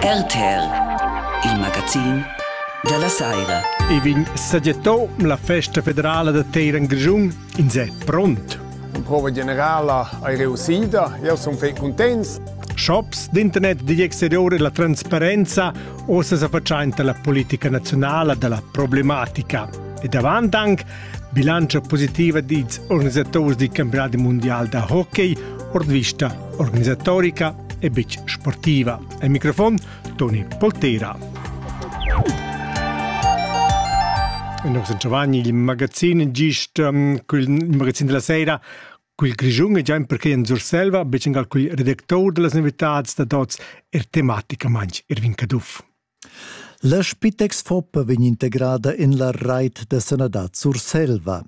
RTL, il magazin della saira. I vegn sagietto la festa federala da Teiran Grischun in se pront. In prova generala hai reusida, io sono fei contents. Shops d'internet digl exterior e la transparenza ossa sa facciainta la politica nazionala della problematica. E davant anche Bilantscha positiva dils organisaturs dil campionadi mundial da hockey ord vista organisatorica e betg sportiva. Al microfon Toni Poltera. Noi San Giovanni, il magazin gist um, il magazin della sera quel Grischun e già perché in Surselva, becen al quel redactor della novitads da tots er tematica manch Irvin Caduff. La Spitex Foppa vegn integrada en la reit da sanadad Surselva.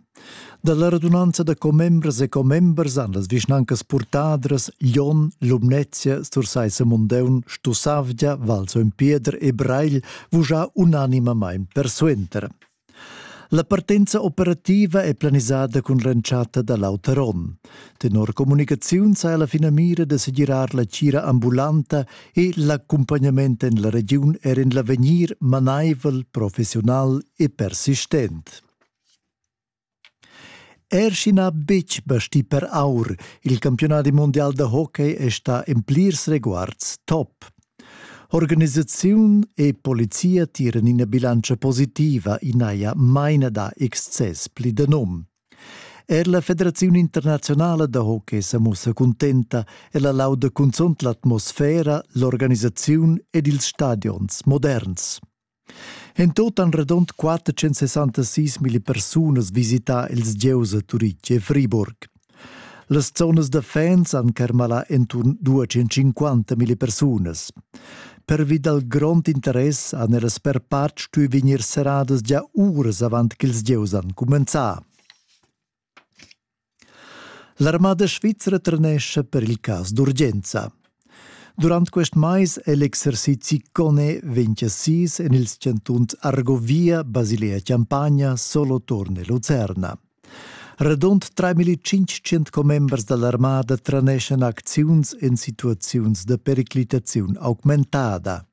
Dalla radunanza da commembras e commembers han las vischnancas Purtadras, Lyon, Lumnezia, Sursaissa Mundeun, Stussavgia, Val Pieder e Breil vugià unanimamain persuenter. La partenza operativa è planisada cun l'entschatta da l'auter onn. Tenor communicaziun sa la finamira da segirar la tgira ambulanta e l'accumpagnament en la regiun er en l'avegnir manaivel, professional e persistent. Er sch'i n'ha betg bastì per aur, il campiunadi mundial da hockey è stà en plirs reguards top. Organisaziun e polizia tiran ina bilantscha positiva, i n'haja maina da excess pli da num. Er la Federaziun internaziunala da hockey sa mussa cuntenta, ella lauda cunzunt l'atmosfera, l'organisaziun ed ils stadions moderns. En tut han radund 466 mila persunas visità ils gieus a Turitg e Friburg. Las zonas da fans han carmalà enturn 250 mila persunas. Pervi dal grond interess han ellas per part stuì vegnir serradas gia uras avant ch'ils gieus han cumenzà. L'armada svizra trenescha per il cas d'urgenza. Durant quest mais è l'exercizi CONE 26 en ils chantuns Argovia, Basilea Champagna, Soloturn e Lucerna. Radund 3500 commembers da l'armada treneschan acziuns en situaziuns da periclitaziun augmentada.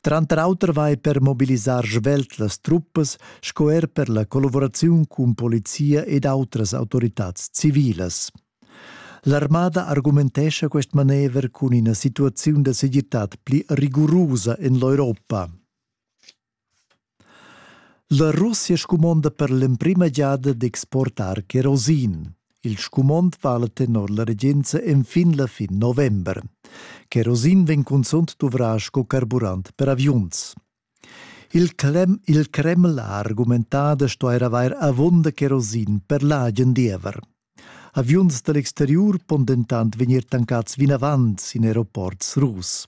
Tranter auter vai per mobilisar svelt las truppas sco er per la collavuraziun cun polizia ed autras autoritads civilas. L'armada argumentescha quest manever cun ina situaziun da segirtad pli rigurusa en l'Europa. La Russia scumonda per l'emprima giada d'exportar cherosin. Il scumond vala tenor la regenza enfin la fin november. Cherosin vegn cunzunt duvrà sco carburant per aviuns. Il, Krem, il Kreml ha argumentà da stuair avair avunda cherosin per l'agen diever. Aviuns da l'exteriur pon dentant vegnir tancads vinavant sin aeroports rus.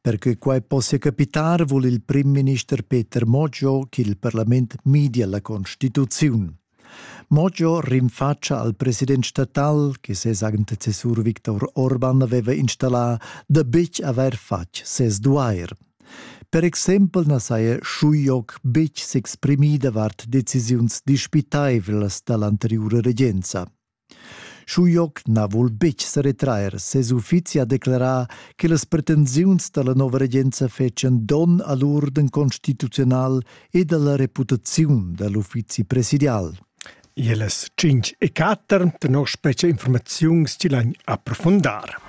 Perche quai possia capitar vul il primminister Peter Moggio ch'il parlament midia la constituziun. Moggio rinfatscha al president statal, che ses antecessur Viktor Orban aveva installà, da betg avair fatg ses duair. Per exempel na saja Schujoc betg s'exprimì davart decisiuns dispitaivlas da l'anteriura regenza. Schujoc na vul betg seretrair. Ses uffizi ha declerà che las pretensiuns da la nova regenza fetschan donn a l'urden constituzional ed a la reputaziun da l'uffizi presidial. Ielas 5 e 4 tenor specie informaziuns ti lain approfundar.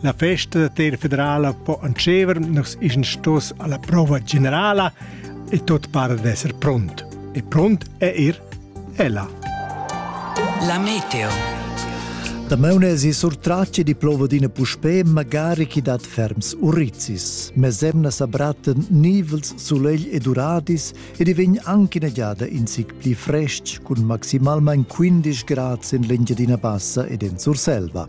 La festa da terra federala po entscheiver nus ischan stos alla prova generala e tot para d'esser pront. E pront è er ella. La meteo. Da meune si surtrace di plova d'ina puspè magari chi dat ferms urizzis, mes emna s'abratten nivels sulegl ed uradis e di vegn anche una giada in sic pli frestg cun maximalmain 15 grad in l'Engiadina Bassa ed in Surselva.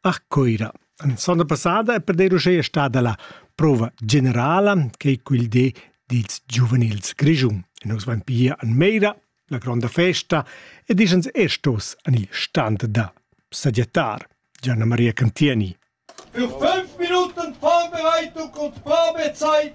A Cuira. La sonda passada è per dir uschè stada la prova generala che quel di dils giuvenils Grischun. E nus vain pia an Meira, la gronda festa, ed ischens er stos an il stand da sagiatar. Gianna Maria Cantieni. Für fünf Minuten Vorbereitung und Vorbezeit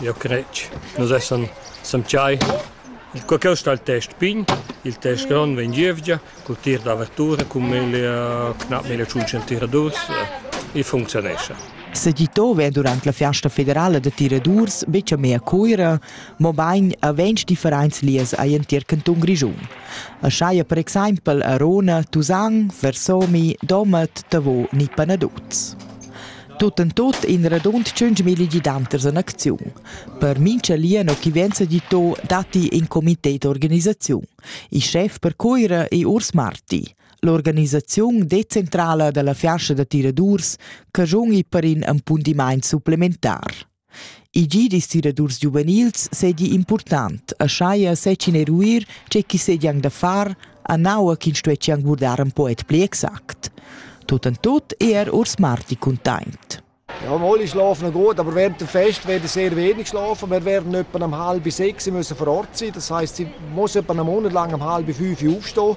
Eu cret nus essan samtgai, co ch'eu sta il test pign, il test grond vegn gievgia cul tir d'avertura cun mille gnanc mille tschunch tiradurs e funcziunescha. Segitò vè durant la Fiasta federala da tiradurs be chamè a Cuira, mobain a ventg differents lieus a l'entir cantun Grischun. A saja per exaimpel a Rona, Tusan, Versomi, Domat, Tavo ni Panaduz. Tut en tut in radund tschunchmilli gidanters en acziun. Per mincha lien chi venza gitto datti in comité d'organisaziun. Il schef per Cuira è Urs Marti. L'organisaziun decentrala da la fiascia da tiradurs caschun per in appundimaint supplementar. Il gi distilladurs giuvenils seigi impurtant, aschia seigien eruir tgei ch'i seigien da far, anaua ch'ins stueschien guardar in poet pli exact. Tut en tut è er Urs Marti cuntaint. Ja, alle schlafen gut, aber während dem Fest werden sehr wenig schlafen. Wir werden etwa um halb sechs müssen vor Ort sein. Das heisst, sie müssen etwa einen Monat lang um halb fünf aufstehen.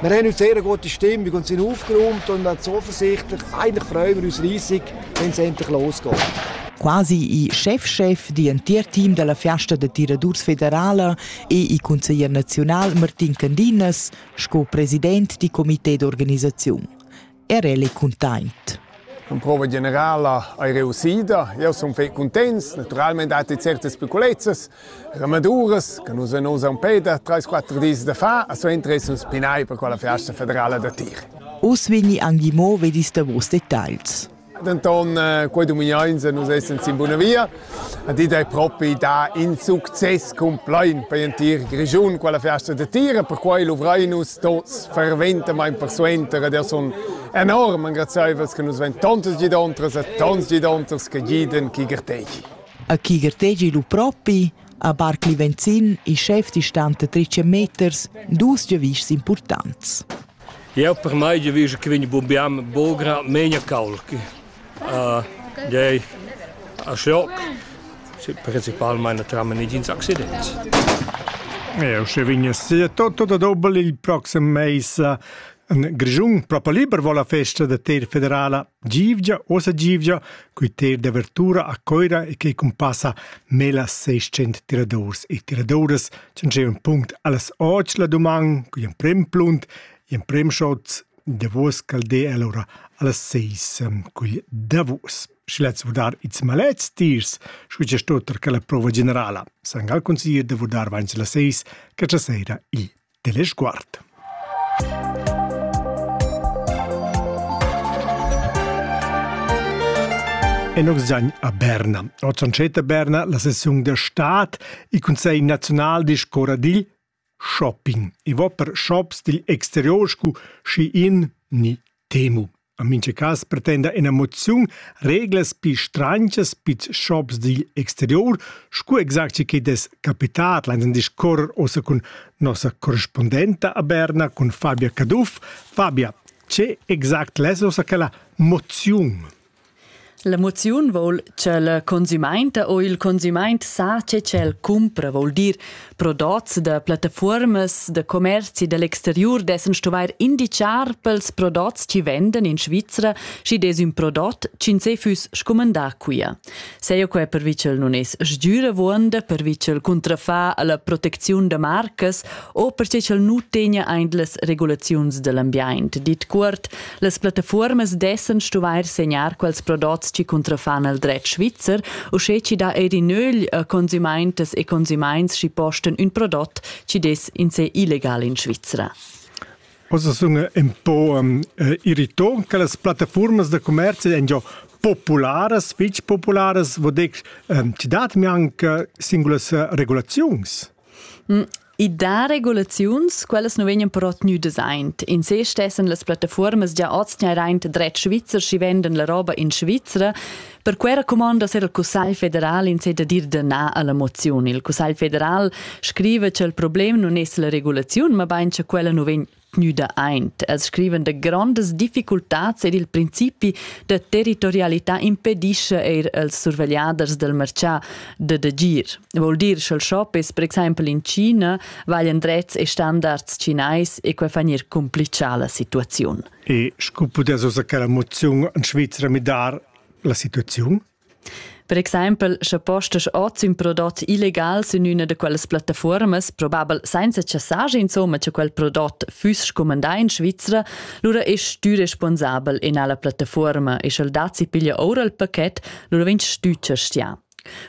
Wir haben uns sehr gute Stimmung und sind aufgeräumt und zuversichtlich. Eigentlich freuen wir uns riesig, wenn es endlich losgeht. Quasi i chef-chef di entir team dalla fiasta da tiradurs federala e i consiglier naziunal Martin Candinas sco president di comité d'organisaziun. Era el è cuntent. La prova generala è reussida. Io sono fai contents. Naturalmente dati certe speculezias, ramaduras che nus non usan pe da 3-4 dis da fa, a so interessa un spinai per quella festa federale da tir. Oss vegni angi mo vedis da vos dettagls. Denton, quei dumignons nus essens in buna via. ed id ei propi da in success complein per l'entir Grischun quella festa de tira, perquei luvrein nus tots ferventamain persuenter ed sun enorm engraziaivels che nus vein tontas gidontras e tons gidonters che giden chi gertegi. A chi gertegi lu propi? A Barcli Venzin, il chef di stante 13 meters, dus giavischs importants. Eu per mai giavischo che vegni bumbiam bogra menia caulchi. Gei a schoc, principalmein trammen negins accidents. Eu sche vigna sia tutto da dobbel il proxim meis in Grischun propo liber vo la festa da Ter federala Givgia, osa Givgia, cui ter d'avertura a Coira e che cumpassa mela 600 tiradors e tiradoras, c'en c'è un punct allas 8 la doman, cui in prem plunt, in prem shots, davos ch'el de el ora allas seis cugl davos sche lez vurdar ils malets tiers scu che sto tar quella prova generala san gal consiglir da vurdar vains las seis che cha seira il telesguard Enox zagn a Berna. Oz on a Berna la sessiun da stad. Il Consiglio nazionale discorra digl Shopping. I va per shops digl exterior scu schi in ni temu. En mincha cas pretenda ena moziun reglas pi stranchas pils shops digl exterior, scu exact che chi'd es capitat lainsan discuorrer uossa cun nossa correspundenta a Berna, cun Fabia Caduff. Fabia, che exact less uossa quella moziun? La moziun vol cha la consumainta o il consumaint sa che ch'el cumpra, vol dir prodots da plattafuormas da commerzi da l'exteriur dessan stuvair indichar pels prodots chi vendan in Svizra, schi dess ün prodot ch'in se füss scumandà quia. Seia quai pervi ch'el nun es sgüravuonda, pervi ch'el cuntrafà a la protecziun da marcas o perche ch'el nu tegna aint las regulaziuns da l'ambiaint, dit cuort Las plattafuormas dessan stuvair segnar quels prodots chi cuntrafan al dret svizzer, uschè chi dà eir in ögl a consumaintas e consumaints chi postan ün prodot chi dess in se illegal in Svizra. Ossa sun ün po um, eh, irrito che las plattafuormas da commerzi èn già popularas, fitg popularas, vudex, ehm, ti dat mi anche singulas eh, regulaziuns. Mm, I dà regulaziuns, quellas nu vegnan però tgnüdas aint. In se stessan las plattafuormas già oz tgnairaint dret svizzer, schi vendan la roba in Svizra. Per quera cumondas er il Cussagl federal in se da dir da na alla moziun. Il Cussagl federal scriva cha il problem nun es la regulaziun, ma bain cha quella nu vegn tgnüda aint. Els scrivan da grondas difficultats ed il principi da territorialità impedischa eir als survegliaders del marchà da d'agir. Vol dir sch'el shoppes per exaimpel in China, vaglian drets e standards chinais e quai fa gnir complichà la situaziun. E scu pudess ossa quella moziun in Svizra midar la situaziun? Per exempel, sche postas oz ün prodot illegal sün üna da quellas plattafuormas, probabel sainza chassage insomma, cha quel prodot füss scumandà in Svizra, lura ist tü responsabel in alla plattafuorma e sch'el dat si piglia oura il paket, lura vegn stütscha stià.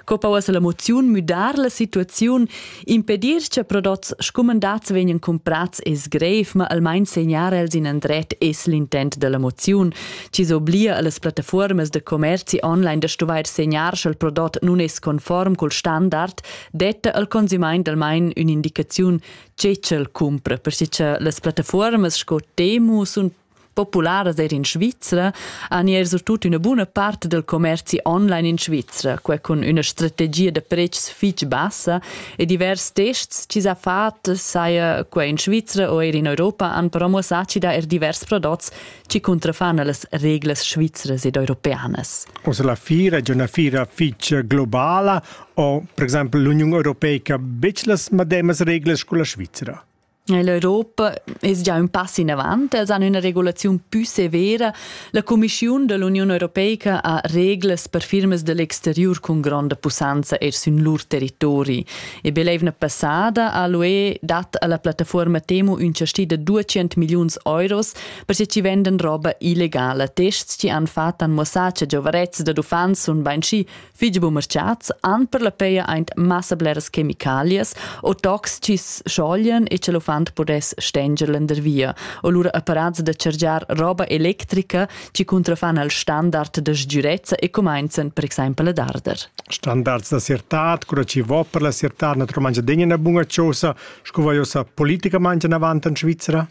Co pausa la moziun müdar la situaziun Impedir che prodots scumandats vegnan comprats es grev, ma almain segnar els in andret es l'intent da la moziun, chi s'oblia a las plattafuormas da commerzi online da stuvair segnar sch'el prodot nun es conform cul standard, detta al consumaint almain ün'indicaziun che ch'el cumpra, perche cha las plattafuormas sco Temu sun popularas er in Svizra han er surtut üna buna part del commerzi online in Svizra, quai cun üna strategia da prezs fich bassa e divers tests chi s'ha fat, saja qua in Svizra o eir in Europa, han però muossà chi dà er divers prodots chi cuntrafan a las reglas svizras ed europeanas. Ossa la fira è una fira fitg globala o, per exempel, l'Union Europeica betg las mademas reglas con la Svizra? L'Europa es già ün pass inavant, els han üna regulaziun pü severa. La Cumischiun da l'Uniun Europeica ha reglas per firmas da l'exteriur cun gronda pussanza eir sün lur territori. E be l'eivna passada ha l'UE dat a la plattafuorma Temu ün chasti da 200 milliuns euros per se chi vendan roba illegala. Tests chi han fat han muossà cha giovarets dad uffants sun bainschi Figl bumerchats han per la peia aint massa bleras chemicalias o tocs chi's scioglien e cha l'uffant pudess stenger lendervia o lura apparats da chargiar roba electrica chi cuntrafan al standard da sgürezza e cumainzan per exaimpel ad arder. Standards da siertad, cura chi vo per la siertad naturalmaing adegna üna buna chosa, sco vaiosa politicamaing anavant in Svizra?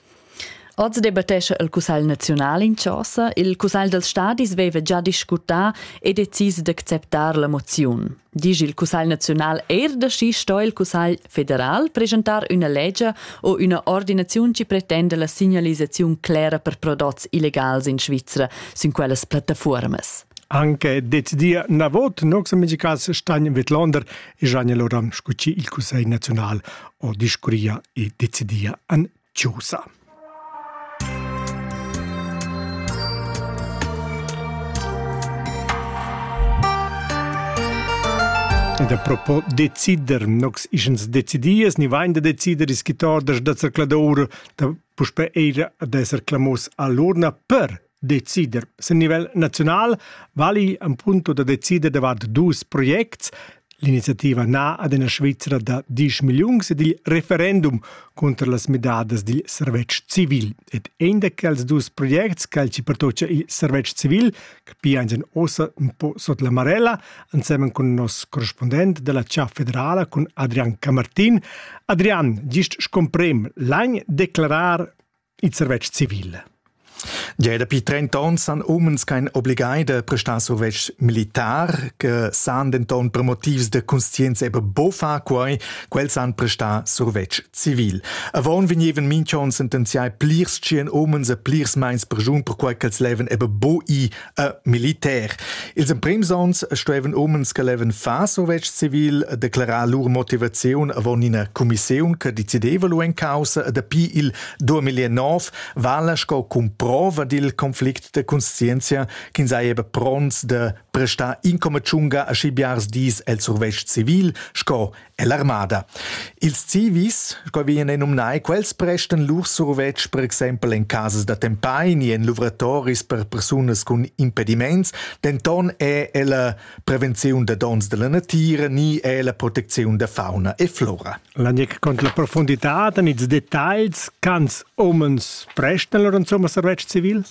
Oz debattescha il Cussegl naziunal in chasa. Il Cussegl dals stadis veva già discutà e decis d'acceptar la moziun. Dici il Cussegl naziunal er da schi sto il Cussegl federal presentar üna legia o üna ordinaziun ci pretenda la signalisaziun clera per prodots illegals in Svizra sin quellas plattafuormas. Anche decidia na vot nox amici cas Stein Wetlander e Gianni Loran scuci il Cussegl naziunal o discuria e decidia an Chaussa. Ed a propo decider nox ischens decidias, ni vain da decider is chi tordas da zercladour da puspè eira ad esser clamos all'urna per decider. Sin nivel naziunal vali ein punto da decider davart dus projects. L'iniziativa na ad una Svizzera da 10 milliuns ed il referendum contro las midadas dil servetsch civil. Ed ein da quels dus projects che ci pertocca il servetsch civil, che piangen ossa un po sot la marella, insieme con nos corrispondent della CA federala, con Adrian Camartin. Adrian, gist scomprem, l'agn declarar il servetsch civil. Ja dapi 30 ans san umens kein obligai da prestar survetsch militar, che san denton per motivs de conscienza eben bofa quai, quels san prestar survetsch civil. Avon vegneven minchon sentenziai plirs tschien omens e plirs meins per jun per quai ch'els leven eben bo i äh, militär. Ils emprims onns stuevan umens che levan far survetsch civil declarar lur motivaziun avon ina commissiun che decideva lu en causa dapi il 2009 vala sco cumprova dil conflict de conscienzia ch'ins eieba pronts de prestar incominciunga a schi biars dis el survetsch civil sco Ell'armada. Ils civis, sco vien ei numnai, quels prestan lur survetsch per exempel en casas da tempai ni en luvratoris per persunas cun impediments, denton è ella prevenziun da donns dalla natira ni è la protecziun da fauna e flora. Lanec con la profunditad en ils detagls, cans omens prestan lur insomma survetsch civil?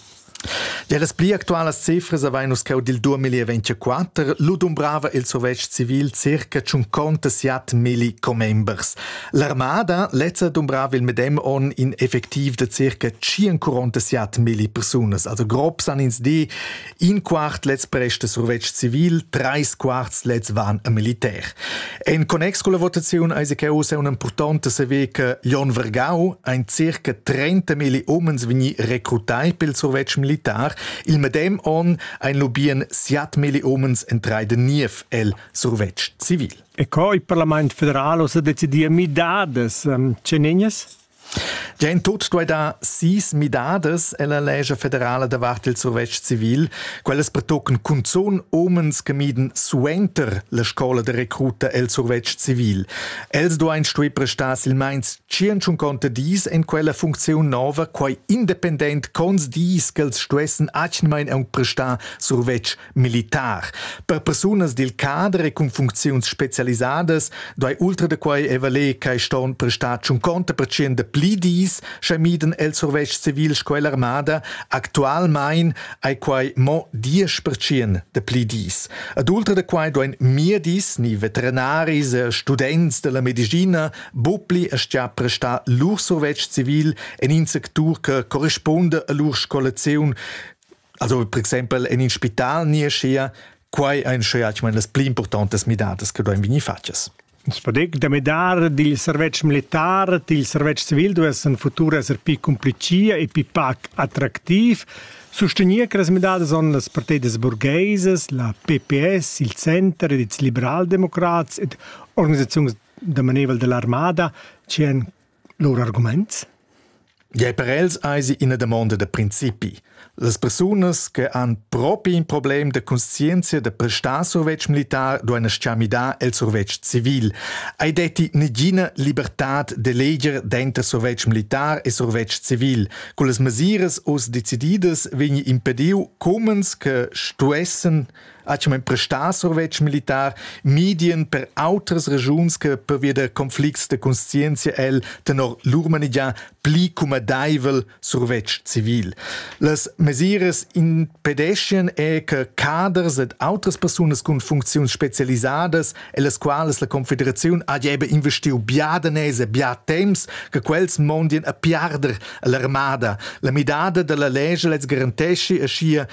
Dellas pli actualas cifras avain nus cheu dil 2024. Lu dumbrava il survetsch civil circa tschuncontasat milli commembers. L'armada lezza dumbrava il medem onn in effectiv da circa tschincontasat milli persunas. Also grob san ins dir, in quart lez presta survetsch civil, treis quarts lez van a militär. En connex con la votaziun eis che ussa un'impurtonta saver che Jon Vergau ein circa 30 mili umens vegni recrutai pel survetsch militar. Il medem onn ein lobien 7 mili umens entrai de Niev el survetsch civil. E co il Parlament federal ha decidiu midadas um, cenegnas? Gia in tut duai dar sis midadas ella lescha federala davart il survetsch civil. Quellas pertocan cunzun umens che miden suenter la scola de recruta el survetsch civil. Els duain stuer prestar silmeins 150 dis en quella funcziun nova, quai independent cons dis ch'els stuessen atgnamain aunc prestar survetsch militar. Per persunas dil cader e cun funcziuns specialisadas doi ultra da quei evaler che ston prestar tschun conta percient de pli dis, sche miden el survetsch civil scolarmada actualmein ai quei mo 10% de pli dis. Ad ultra da quei doen mir dis ni veterinaris e students della medicina bopli a stia prestar lur survetsch civil en in sectur che corrisponde a lur scolaziun Also per exempel en in spital ni schia quai ein schia ich meine das pli importantes midadas che du ein vini fatgas. Es podec da medar dil servetsch militar, dil servetsch civil, du es en futur esser pi cumplicia e pi pac attractiv. Sostegner che las midadas son las partedes burgueses, la PPS, il Center ed ils liberaldemocrats ed organisazioni da maneval dell'armada ci en lur argumaints? Gie, per els eisi ina damonda da principi. Las persunas che han propi in problem da conscienzia da prestar survetsch militar duein sciamidar el survetsch civil. Ei detti negina libertad de leger denter survetsch militar e survetsch civil. Con las mesiras oz decididas vegni impediu comens che stuessen ha schon prestà survetsch militar medien per autras regiuns che pervia der conflicts de conscientia el tenor lur manegia pli comodaivel survetsch civil. Las mesiras impedeschien è che caders ed autres personas con funcziuns specialisadas e las quales la Confederazione ha jebe investiu bia danese bia temps che quels mondien a piarder l'armada. La midada della lege les garantesci e scia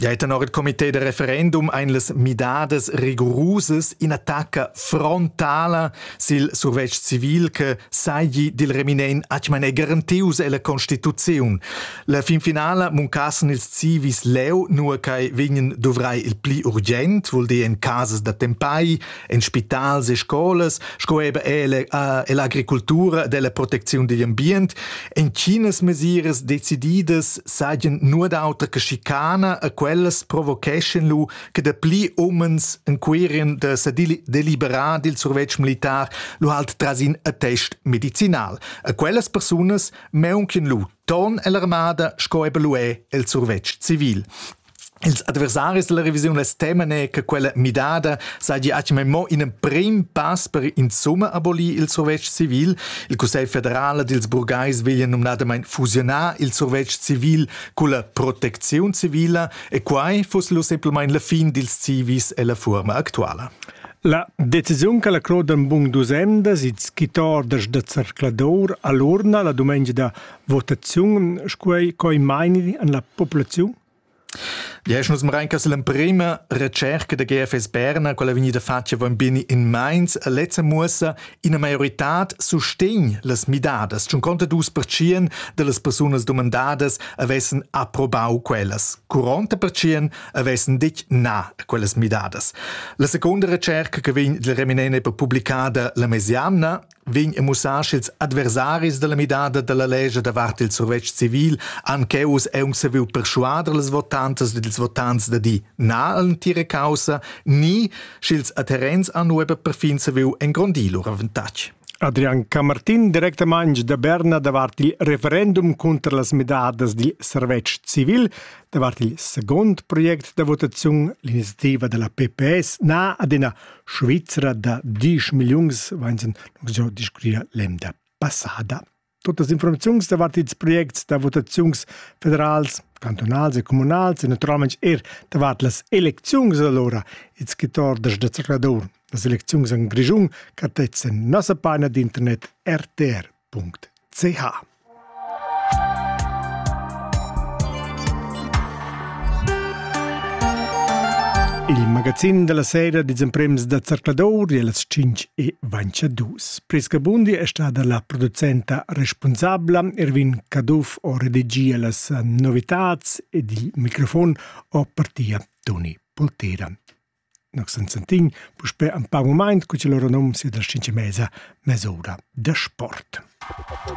Ja è tenor il comité de referendum ein les midadas rigurusas in attacca frontala sil survetsch civil che sagli dil reminen atgman è garantius ella Constituziun. La fin finala muncassen ils civis leu nur kai vegnen dovrai il pli urgent, vuol dir in cases da tempai, en spitals e scolas sco eben l'agricultura della protecziun digl ambient entginas mesiras decididas sajan nur d'autra che schicana a quellas provocheschen lu che de pli umens en querien de se deliberar dil survetsch militar lu halt trasin a test medicinal a quellas persunas meunchen lu ton ell'armada sco eben lu è el survetsch civil Els adversaris dalla revisiun less temene che quella midada saigi atgna mo in emprim pass per insumma abolir il survetsch civil. Il Cussegl federal dils burgais veglia numnadamain fusionar il survetsch civil culla protecziun civila e quai fuss lu semplamain la fin dils civis e la fuorma actuala. La decisiun che la Claude Bung dusendas, il skitor da zercladur, all'urna la dumengia da votaziun scuei coi maini an la populaziun? Yes, nus marenca l'emprema recerca da GFS Berna, quella vegnida fatga bambini in Mainz, lezza muossa ina maioritad sustegn las midadas. C'un conta dus percien de las persunas domandadas avessen approbau quellas. Curonta percien avessen ditg na a quellas midadas. La seconda recerca che vegn della reminene per pubblicada la mesiamna vegn e mussar sch'ils adversaris dalla midada dalla lescha davart il survetsch civil han cheu uss aunc saviu perschuader las votantas ed ils votants da di na all'entira caussa ni sch'ils adherents han ueba perfin saviu engrondir lur avantatg. Adrian Camartin directamaing da Berna davart il referendum cunter las midadas dil servetsch civil davart il second project da votaziun l'iniziativa della PPS na adina Svizra da diesch milliuns vains giò discurria l'emda passada. Tutas informaziuns davart ils projects da votaziuns federals, cantunals e comunals e naturalmaing er davart las elecziuns alura ils quitordas da Zrcladur. Las elecziuns in Grischun cartezzan nossa paina d'internet RTR. .ch Il magazin della sera dits emprems da Zercladour e las 5 e vancia dus. Priska Bundi è stata la producenta responsabla, Erwin Caduff ho redegia las novitats ed il microfon ho partia Toni Poltera. Nus sen sentin puspè in pa mumaint co ch'el ora nom sia destincha mesa, mesoda da sport.